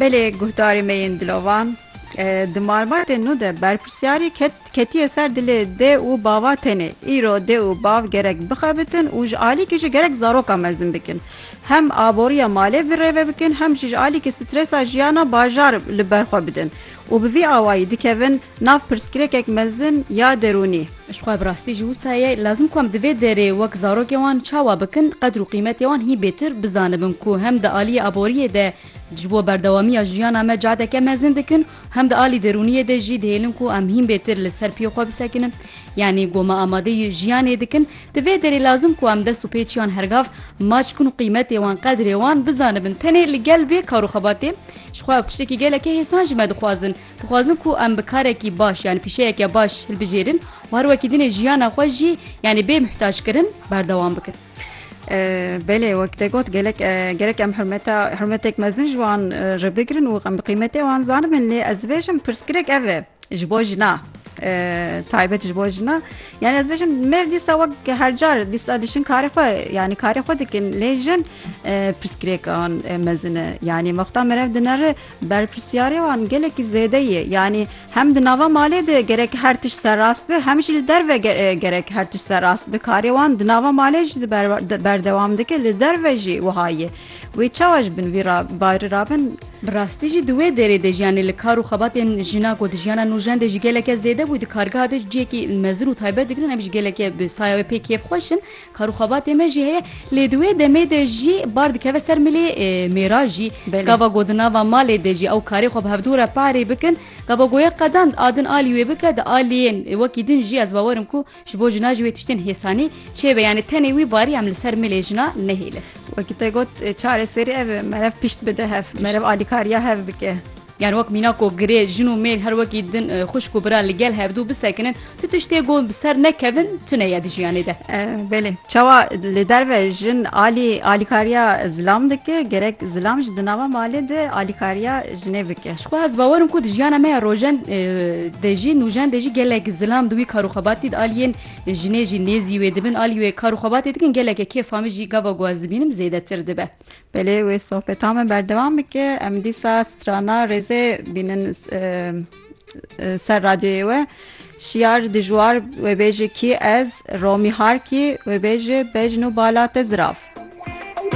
Belê guhdarê me yên dilovan di malbatên nû de berpirsyarî ketiye ser dilê dê û bava tenê. Îro dê û bav gerek bixebitin û ji alîkî jî gerek zaroka mezin bikin. Hem aboriya malê bi rêve bikin hem jî ji alîkî stresa jiyana bajar li ber xwe bidin û bi vî awayî dikevin Nav pirsgirêkek mezin ya derûnî. Ji xwe bi rastî ji wisa ye lazim ku em di vê derê wek zarokên wan çawa bikin qedr û qîmetê wan hî bêtir bizanibin ku hem di aliyê aboriyê de ji bo berdewamiya jiyana me cadeke mezin dikin û hem di alî derûniyê de jî dihêlin ku em hîn bêtir li ser piyê xwe bisekinin yanî ku me amadeyî jiyanê dikin di vê derê lazim ku em dest û pê çiyan hergav maç bikin û qîmetê wan qedrê wan bizanibin tenê li gel vê kar û xebatê ji xwe ew tiştekî gelekî hêsan ji me dixwazin Dixwazin ku em bi karekî baş yanî pîşeyeke baş hilbijêrin û her wekî dinê jiyana xwe jî yanî bê muhtaçkirin berdewam bikin. Belê wek te got gelek gerek em hurmeta hurmetek mezin ji wan re bigirin û em bi qîmetê wan zanibin lê ez dibêjim pirsgirêk ev e ji bo jina. taybet ji bo jina yani ez bêjim mêr dîsa wek her car dîsa dişin karê xwe yani karê xwe dikin lê jin pirsgirêkan mezine yani mexta merev dinere Berpirsyarê wan gelekî zêde ye. Yanî hem di nava malê de gerek her tişt serrast be hem jî li derve gerek her tişt serrast be. Karê wan di nava malê jî berdewam dike li derve jî wiha ye. Wê çawa ji bin vî barî rabin? Bi rastî jî di wê dêrê de jî yanî li kar û xebatên jina ku di jiyana nûjen de jî geleke zêde bû di kargeha de jî ciyekî mezin û taybet digirin em jî geleke bi saya wê pê kêfxweş in. Kar û xebatê me jî heye lê di wê demê de jî bar dikeve ser milê mêra jî. Gava go di nava malê de jî ew karê xwe bi hevdû re parê bikin. Gava goya qedand a din alî wê bike di aliyên wekî din jî ez bawer im ku ji bo jina jî wê tiştên hêsanî çêbe yanê tenê wî barî em li ser milê jina nehêlin. Wekî te got çareserî ev e merev pişt bide hev, merev alîkariya hev bike. Yan wek mîna ku girê jin û mêl her wekî din xwişk û bira li gel hevdu bisekinin, tu tiştê ku bi ser nekevin tune ye di jiyanê de. Belê. Çawa li derve jin alî alîkariya zilam dike, gerek zilam jî di nava malê de alîkariya jinê bike. Ji ku ez bawer im ku di jiyana me ya rojen de jî nûjen de jî gelek zilam di wî kar û xebatî de aliyên jinê jî nêzî wê dibin, alî wê kar û xebatê dikin geleke kêfa min jî gava ku ez dibînim zêdetir dibe. Belê wê sohbeta me berdewam bike. Em dîsa strana rêzê bînin ser radyoyê we. Şiyar dijwar wê bêjê kî ez, Romî Harkî wê bêjê bejn û bala te zirav.